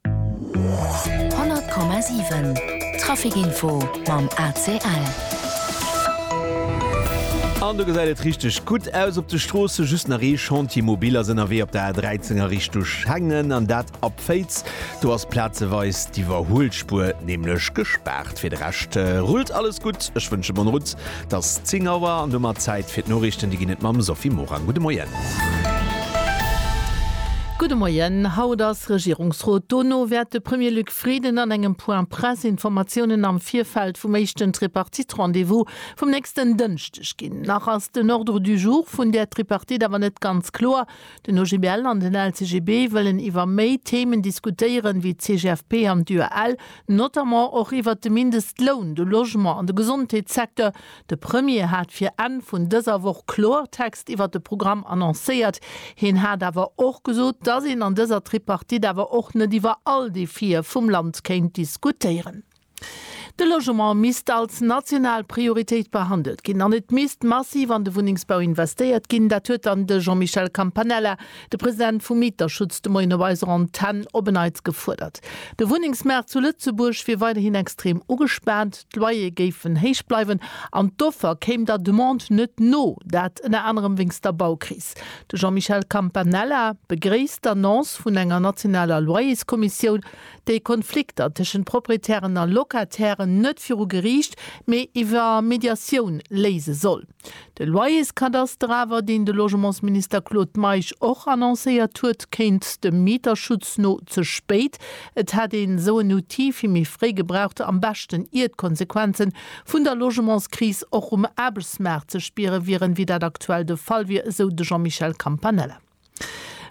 100,7 Trafic Info mam ACL. An do gesäit et richteg gutt aus op de Stroossen. Just nach ee Chantier mobil ass ënnerwee op der A13 a Richtung Schengen, an dat ab Féiz. Do ass plazeweis d'Iwwerhuelspuer nämlech gespaart. Fir de Rescht rullt alles gutt. Ech wënsche bonne route 't ass 10 Auer an domat Zäit fir d'Noriichten. Déi ginn et mam Sophie Morang. Gudde Moien. Gudde Moien. Haut ass Regierungsrot. Dono wäert de Premier Luc Frieden an engem Point Presse Informatiounen am Virfeld vum éischten Tripartite-Rendez-vous vum nächsten Dënschdeg ginn. Nach ass den Ordre du jour vun där Tripartite awer net ganz kloer. Den OGBL an den LCGB wëllen iwwer méi Themen diskutéieren, wéi d'CGFP an d'UEL, notamment och iwwert de Mindestloun, de Logement an de Gesondheetssecteur. De Premier hat fir Enn vun dëser Woch Kloertext iwwert de Programm annoncéiert. Hien hat awer och gesot, dass een an dëser Tripartite awer och net iwwer all Defië vum Land kéint diskutéieren. De Logement misst als national Prioritéit behandelt ginn an et misst massiv an de Wunnengsbau investéiert ginn. Dat huet dann de Jean-Michel Campanella, de President vum Mieterschutz, de Moien op eiser Antenn op en Neits gefuerdert. De Wunnengsmaart zu Lëtzebuerg wier weiderhin extrem ugespaant, d'Loyere géifen héich bleiwen an d'Offer kéim der Demande net no. Dat ënner anerem wéinst der Baukris. De Jean-Michel Campanella begréisst d'Annonce vun enger nationaler Loyerskommissioun. déi Konflikter tëschent Proprietären a Locatairen net viru Geriicht, mee iwwer Mediatioun léise soll. De Loyerskadaster awer, deen de Logementsminister Claude Meisch och annoncéiert huet, kéint dem Mieterschutz no ze spéit. Et hätt een esou en Outil vill méi fréi gebraucht, am beschten ier d'Konsequenze vun der Logementskris och um Aarbechtsmaart ze spiere wieren, wéi dat aktuell de Fall wier, esou de Jean-Michel Campanella.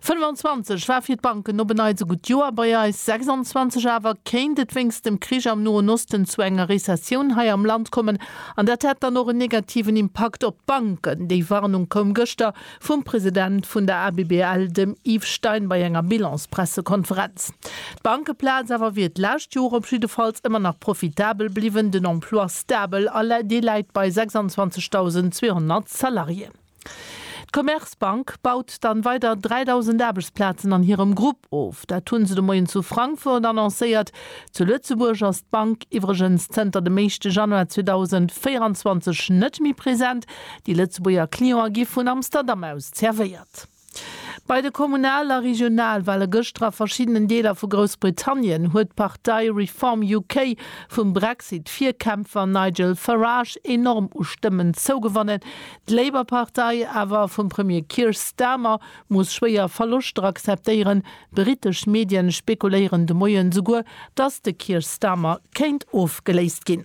25 war fir d'Banken op en Neits e gutt Joer, bei eis 26 awer kéint et wéinst dem Krich am Noen Osten zu enger Rezessioun hei am Land kommen an dat hätt dann och en negativen Impakt op d'Banken. Déi Warnung koum gëschter vum President vun der ABBL, dem Yves Stein, bei enger Bilans-Pressekonferenz. D'Bankeplaz awer wier d'lescht Joer op jiddefalls ëmmer nach profitabel bliwwen, den Emploi stabel a dee läit bei 26.200 Salariéen. D'Commerzbank baut dann weider 3.000 Aarbechtsplazen an hirem Grupp of. Dat hunn se de Moien zu Frankfurt annoncéiert. Zu Lëtzebuerg ass d'Bank iwwregens zënter dem éischte Januar 2024 net méi present. Déi Lëtzebuerger Clientë gi vun Amsterdam aus zervéiert. Bei de Kommunal a Regionalwale gëschter a verschiddenen Deeler vu Groussbritannien huet d'Partei Reform UK vum Brexit-Virkämpfer Nigel Farage enorm u Stëmmen zougewannen. D'Labour-Partei awer vum Premier Keir Starmer muss schwéier Verloschter akzeptéieren. Britesch Medien spekuléieren de Moien souguer, datt de Keir Starmer kéint ofgeléist ginn.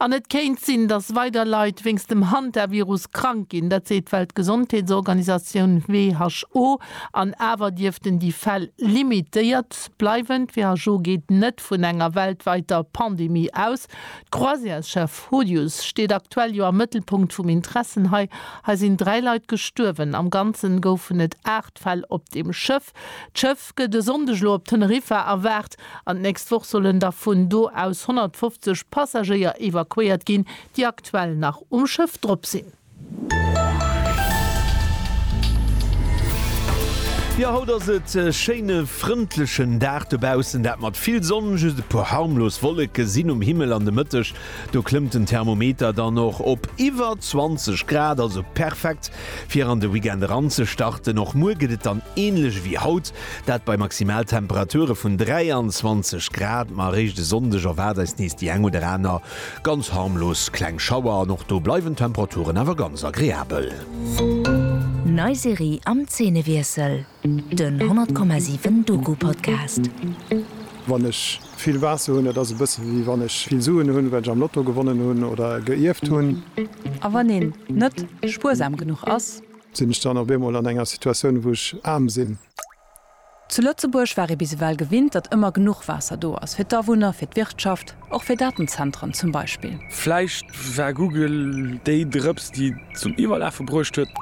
An et kéint sinn, datt weider Leit wéinst dem Hantavirus krank ginn. Dat seet d'Weltgesondheetsorganisatioun, who. An awer dierften déi Fäll limitéiert bleiwen. D'WHO geet net vun enger weltwäiter Pandemie aus. D'Croisière-Chef Hodius steet aktuell jo am Mëttelpunkt vum Interessen hei. Hei sinn dräi Leit gestuerwen. Am Ganzen goufen et D'Fäll op dem Schëff, D'Schëff gëtt e Sonndeg elo op Teneriffa erwaart an d'nächst Woch sollen da vun do aus 150 Passagéier evakuéiert ginn, déi aktuell nach um Schëff drop sinn. Jo, haut ass et e schéine frëndlechen Dag dobaussen, dat mat vill Sonn. Just e puer harmlos Wolleke sinn um Himmel an de Mëtteg do klëmmt den Thermometer dann och op iwwer 20 Grad, also perfekt Fir an de Weekend eranzestarten. Och muer gëtt et dann änlech ewéi haut, dat bei Maximaltemperature vun 23 Grad. Ma eréischt e Sonndeg erwaart eis nees déi eng oder aner ganz harmlos kleng Schauer an och do bleiwen d'Temperaturen awer ganz agreabel. Nei Serie am Zeenewiessel, den 100,7 Doku-Podcast. Wann ech Vill Waasser hunn, dat ass e bësse wéi wann ech vill Suen hunn, well ech am Lotto gewonnen hunn oder geierft hunn. A wann een net spuersam genuch ass? Sinn ech dann op eemol an enger Situatioun, wou ech aarm sinn? Zu Lëtzebuerg war ee bis ewell gewinnt, datt ëmmer genuch Waasser do ass, fir d'Awunner, fir d'Wirtschaft, och fir Datenzentren zum Beispill. Vläicht war Google déi Drëps, déi et zum Iwwerlafe bruecht huet.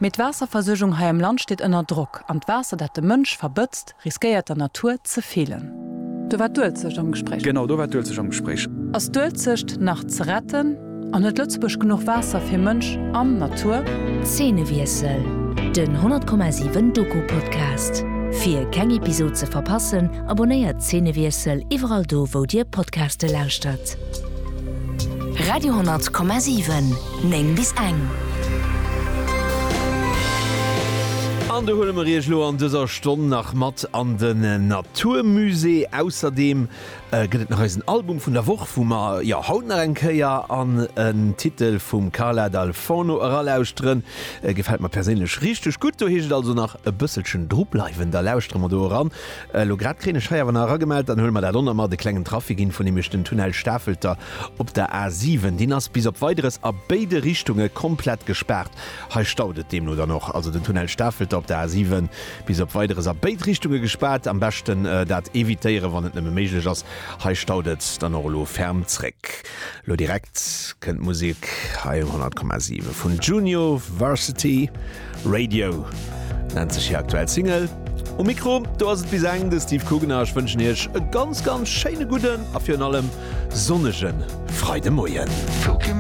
Mee d'Waasserversuergung hei am Land steet ënner Drock, an d'Waasser, dat de Mënsch verbëtzt, Riskéiert der Natur ze feelen. Do war d'Uelzecht am Gespréich. Genau, do war d'Uelzecht am Gespréich. Ass d'Uelzecht nach ze retten? An huet Lëtzebuerg genuch Waasser fir Mënsch an Natur? Zeenewiessel, den 10,7 Doku-Podcast. Fir keng Episod ze verpassen, abonnéiert Zeenewiessel iwwerall do wou dir Podcaste lauschtert. Radio 10,7, 9 bis eng. An do huele mer iech elo an dëser. Stonn nach mat an den Natur Musée. Ausserdeem gëtt et nach eisen Album vun der Woch, wou mer jo haut nach eng Kéier an en Titel vum Carla Dal Forno eralauschteren. Gefält mer perséinlech richteg gutt. Do heescht et also nach e bësselchen dru bleiwen, da lauschtere mer do eran. Elo grad kréien ech hei awer nach eragemellt, dann huele mer dat onnert mat, e klengen Trafic Info, nämlech den Tunnel Stafelter op der A 7, deen ass bis op Weideres a béide Richtunge komplett gespaart. Hei staut et deemno dann och. Also den Tunnel Stafelter op der A 7 bis op Weideres a béid Richtunge gespaart. Am beschten dat evitéieren, wann et nëmme méiglech ass. Hei staut et dann och elo ferm zréck. Lo direkt kënnt d'Musek hei um 100,7 vun Junio Varsity. Radio nennt sech hir aktuell Single. Um Mikro do ass et bis eng de Steve Coogan a ech wënschen iech e ganz, ganz schéine gudden a virun allem sonnege Freidemoien.